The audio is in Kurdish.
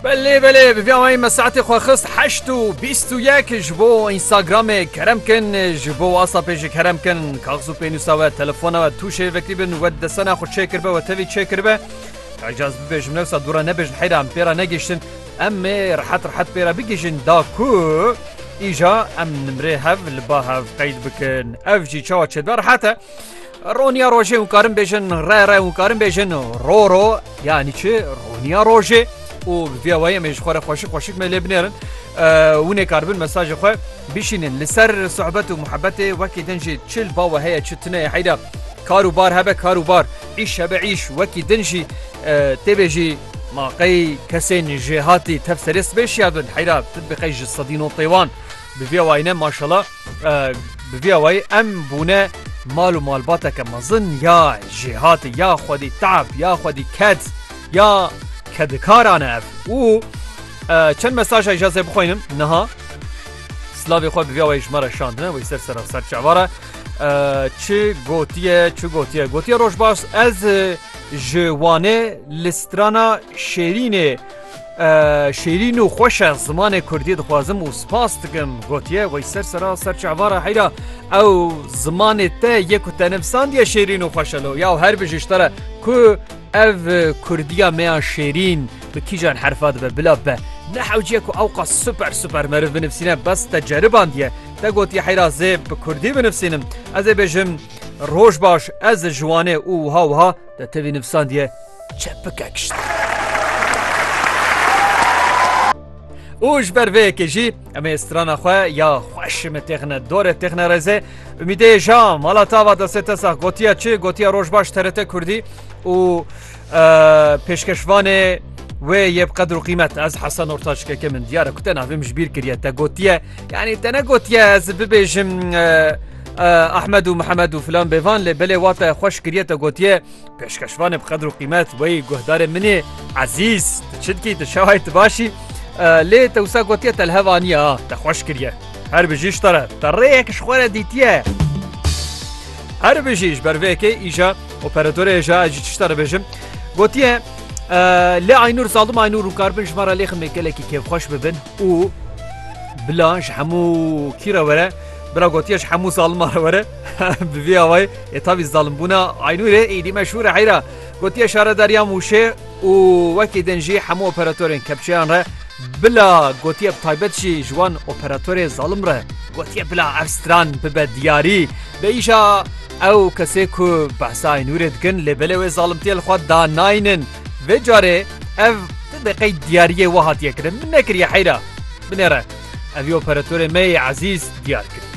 Belê belê bi vî awayî me saetê xwe xist heşt û bîst û yek ji bo Instagramê kerem kin ji bo WhatsAppê jî kerem kin kaxz û pênûsa we telefona we tûşê vekirî bin we desena xwe çêkiribe we tevî çêkiribe Ecaz bibêjim newsa dûra nebêjin heyra em pêra negihiştin em ê rehet rehet pêra bigihîjin da ku îja em nimrê hev li ba hev qeyd bikin ev jî çawa çêdibe rehet e Roniya rojê û karin bêjin re re û karin bêjin ro ro yanî çi roniya rojê û viyawayê me ji xwe re xweşik xweşik me lê binêrin winê karbin mesajê xwe bişînin li ser sohbet û muhebetê wekî din jî çil bawe heye çi tuneye heyda kar û bar hebe kar û bar îş hebe îş wekî din jî têbê jî ma qey kesên jêhatî tev serê sibê şiya bin heyda tu bi qey ji sedî no pêwan bi viyawayne maşala Bi vî awayî em bûne mal û malbateke mezin ya jêhatî ya xwedî te'b ya xwedî ked ya kedikaran e ev û çend mesaja îja zê bixwînim niha Slavê xwe bi vî awayî ji me re şandine wî ser sera ser çavara çi gotiye çi gotiye gotiye roj baş ez ji Wanê li strana Şêrînê Şêrîn û xweş e zimanê Kurdiyê dixwazim û spas dikim gotiye wey ser sera ser çavara heyra ew zimanê te yê ku te nivsandiye şêrîn û xweş elo ya her bi ji te re ku ev Kurdiya me ya şêrîn bi kîjan herfa dibe bila be ne hewciye ku ew qas super super meriv binivsîne bes te ceribandiye te gotiye heyra zê bi Kurdî binivsînim ez ê bêjim roj baş ez ji wanê û wiha wiha De tevî nivîsandiye çepike kişt. û ji ber vê yekê jî em ê strana xwe ya xweşimi têxine dorê têxine rêzê Ümîdê ja mala tava destê te sax gotiya çi gotiya roj baş terete Kurdî û pêşkeşvanê wê yê bi qedir û qîmet ez hesa nortaşkeke min diyare ku te navim ji bîr kiriye te gotiye yanî te ne gotiye ez bibêjim Ahmed û Mihemed û filan bê van lê belê wate xwe şikiriye te gotiye pêşkeşvanê bi qedr û qîmet wey guhdarê min ê ezîz tu çi dikî tu şewayê tu başî lê te wisa gotiye te li hev aniye ha te xwe şikiriye her bijî ji te re te rêyek ji xwe re dîtiye her bijî ji ber vê yekê îja operatörê hêja ez jî tişta dibêjim gotiye lê Aynûr zalim Aynûr û karbin ji me re lêximê gelekî kêfxweş bibin û bila ji hemû kî re were Bira gotiye ji hemû zaliman re were. Bi vî awayî ê tavî zalimbûna Aynûrê êdî meşhûr e heyra. Gotiye şaredariya Mûşê û wekî din jî hemû operatorên kepçeyan re bila gotiye bi taybet jî ji wan operatorê zalim re gotiye bila ev stran bibe diyarî. Bi îşa ew kesê ku behsa Aynûrê dikin lê belê wê zalimtiyê li xwe da naynin. Vê carê ev ti de qey diyariyê we hatiye kirin min nekiriye heyra. Binêre. Ev yê operatorê me yê ezîz diyar kiriye.